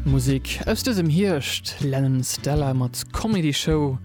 Musik aus dësem Hierscht, Lennon Stella mat Comedy Show.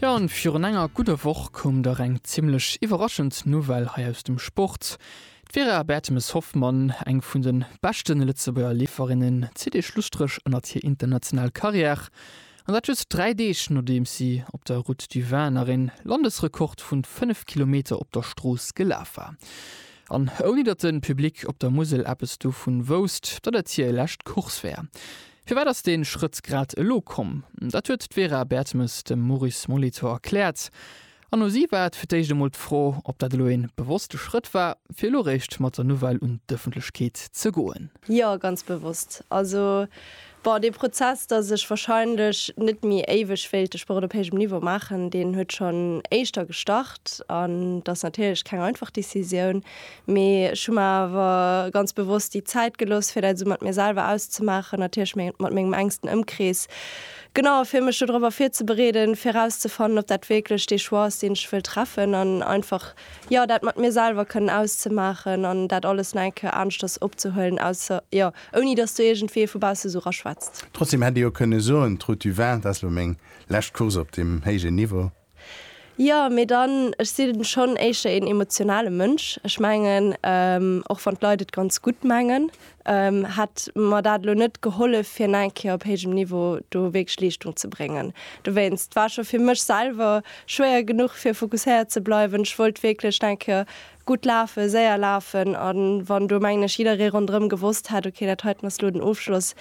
Jo, an virun enger gudder Woch koum dach eng zimlech iwwerraschend Nouvelle hei aus dem Sport. D'Vera Bertemes-Hoffmann, eng vun de beschten Lëtzebuerger Leeferinnen, zitt ee Schlusstréch ënnert hir international Karriär, an dat just 3 Deeg nodeems si op der Route du Vin nach een Landesrekord vun 5 Kilometer op der Strooss gelaf war. An ouni datt de Public op der Musel eppes dovun wousst, datt et hir lescht Course wär. Firwat ass dee Schrëtt grad elo komm? Dat huet d'Vera Bertemes dem Maurice Molitor erkläert. An u si war et fir d'éischt emol d'Fro, ob dat elo ee bewosste Schrëtt war, fir elo réischt mat der Nouvelle un d'Ëffentlechkeet ze goen. Jo, ganz bewosst. Also, bon, dee Prozess, dass ech wahrscheinlech net méi éiweg wéilt de Sport op héijem Niveau maachen, deen huet schonn éischter gestart. An dat ass natierlech keng einfach Decisioun. Mee ech hu mer awer ganz bewosst déi Zäit gelooss, fir dat esou mat mir selwer auszemaachen, natierlech mat mengem enksten Ëmkrees, genau fir mech dodrop ervirzebereeden, fir erauszefannen, ob dat wierklech dee Choix ass, deen ech wëll treffen. An einfach Jo, dat mat mir selwer kënnen auszemaachen an dat alles nach eng Kéier aneschters opzehuelen, ausser, jo, ouni dass do iergendwee vu bausse esou raschwätzt. Trotzdem hätt ee jo kënne soen, d'Route du Vin, dat ass elo meng lescht Course op deem héijen Niveau. Jo, mee dann, ech sinn schonn éischter een emotionale Mënsch. Ech mengen, och wann d'Leit et ganz gutt mengen, hätt mer dat elo net gehollef fir eng Kéier op héijem Niveau do wierklech Leeschtung ze bréngen. Dowéinst war scho fir mech selwer schwéier genuch fir fokusséiert ze bleiwen. Ech wollt wierklech eng Kéier gutt lafen, séier lafen a wann do mengen ech jidderee ronderëm gewosst hätt, ok dat heiten ass elo den Ofschloss,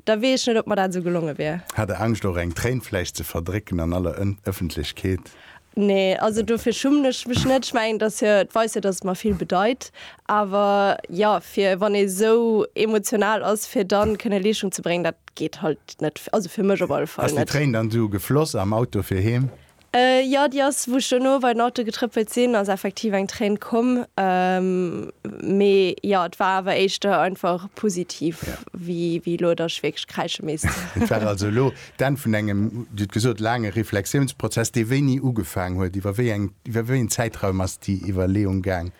da weess ech net ob mer dat esou gelonge wier. Hat der Angscht och eng Tréin vläicht ze verdrécken an aller Ëffentlechkeet? Nee, also dofir schummen ech mech net. Ech mengen, dass hir weist jo, dass et mer vill bedeit. Awer jo, fir wann ee sou emotional ass, fir da kënne Leeschtung ze bréngen, dat geet halt net, also fir mech op alle Fall net. Ass déi Tréin dann esou gefloss am Auto fir heem? Jo, déi ass, wou ech dono bei den Auto getrëppelt sinn, ass effektiv eng Tréin komm. Mee jo, et war awer éischter einfach positiv, wéi elo, dass ech wierklech kräische misst. Et war also elo D'Enn vun engem, Dir hutt gesot, laange Reflexiounsprozess, dee wéini ugefaang huet. Iwwer wéi eng, iwwer wéi een Zäitraum ass déi Iwwerleeung gaang?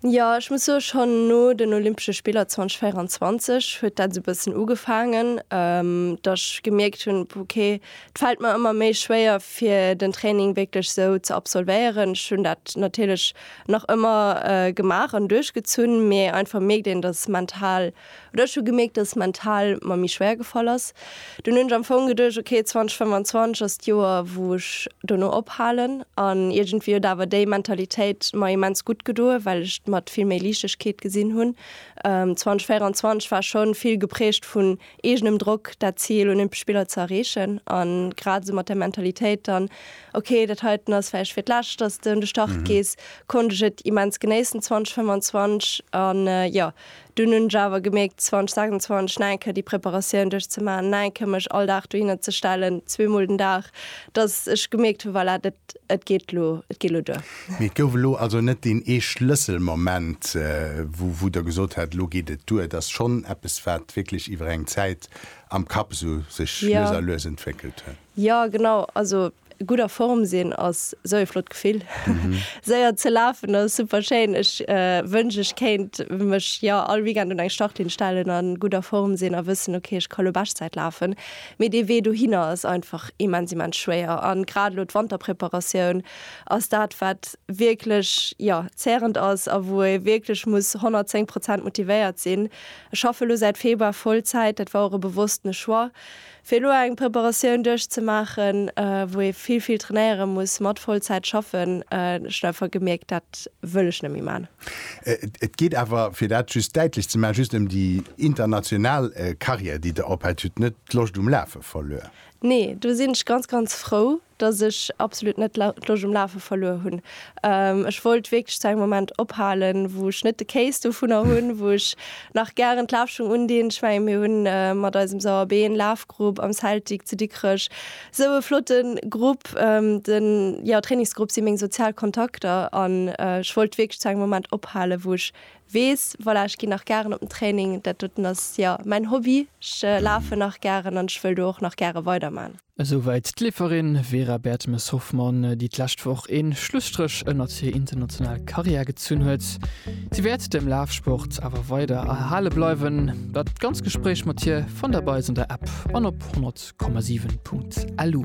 Jo, ech muss soen, schonn no den Olympesche Spiller 2024 huet dat esou e bëssen ugefaangen, datt ech gemierkt hunn, ok, et fält mer ëmmer méi schwéier fir den Training wierklech esou ze absolvéieren. Ech hunn dat natierlech nach ëmmer gemaach an duerchgezunn, mee einfach mierkt een, datt mental Oder ech hu gemierkt, dass et mental mer méi schwéier gefall ass. Dunn hunn ech am Fong geduecht, ok, 2025 ass d'Joer, wou ech dono ophalen. An iergendwéi huet awer déi Mentalitéit mer immens gutt gedoen, well ech d'mat vill méi Liichtegkeet gesinn hunn. 2024 war schonn vill geprägt vun eegenem Drock, dat Zil Olympesch Spiller ze erreechen. An grad esou mat der Mentalitéit dann, ok, dat heiten ass vläicht fir d'lescht, dass s de un de Start gees, konnt ech et immens genéissen 2025. An jo, Dunn hunn ech awer gemierkt, 2026 nach eng Kéier déi Preparatioun duerchzemaachen, nach eng Kéier mech all Dag dohinner ze stellen, zweemol den Dag, dass ech gemierkt hunn, voilà, dat, et geet elo, et geet elo duer. Mee et gouf elo also net deen ee Schlësselmoment, wou, wou Der gesot hätt, elo geet et duer. Et ass schonn eppes, wat wierklech iwwer eng Zäit am Kapp esou sech lues a lues entwéckelt huet. Jo, genau. Also, Gudd a Form sin ass sou ee flott Gefill. Séier ze lafen ass super schéin. Ech wënsch ech kéint mech jo all Weekend un eng Startlinn stellen an gudd a Form sin a wëssen ok ech ka lo Beschtzäit lafen. Mee dee Wee dohinner ass einfach immens immens schwéier an grad lo d'Wanterpreparatioun ass dat wat wierklech jo zährend ass a wou ee wierklech muss 110 Prozent motivéiert sin. Ech schaffe lo säit Februar Vollzäit, dat war och e bewosstene Choix. Fir elo eng Preparatioun duerchzemaachen, wou ee vill, vill trainéiere muss, mat Vollzäit schaffen, ech hunn einfach gemierkt, dat wëll ech net méi maachen. Et geet awer, fir dat just däitlech ze maachen, just ëm déi international Karriär, déi Der ophält. Dir hutt net d'Loscht um Lafe verluer? Nee, do sinn ech ganz, ganz frou, dass ech absolut net d'Loscht um Lafe verluer hunn. Ech wollt wierklech zu engem Moment ophalen, wou ech net de Kéis dovunner hunn, wou ech nach gären d'Lafschung undinn. Ech mengen, mir hunn mat eisem Sauer Been Lafgrupp am Celtic zu Dikrech esou e flotte Grupp. De jo, Trainingsgrupp si meng sozial Kontakter an ech wollt wierklech zu engem Moment ophalen, wou ech weess, voilà, ech ginn nach gären op den Training. Dat doten ass jo mäin Hobby. Ech lafen nach gären an ech wëll do och nach gäre weiderman. Esouwäit d'Leeferin Vera Bertemes-Hoffmann, déi d'lescht Woch ee Schlusstréch ënnert hir international Karriär gezunn huet. Si wäert dem Lafsport awer weider erhale bleiwen. Dat ganz Gespréich mat hir fannt Där bei eis an der App an op 100,7.lu.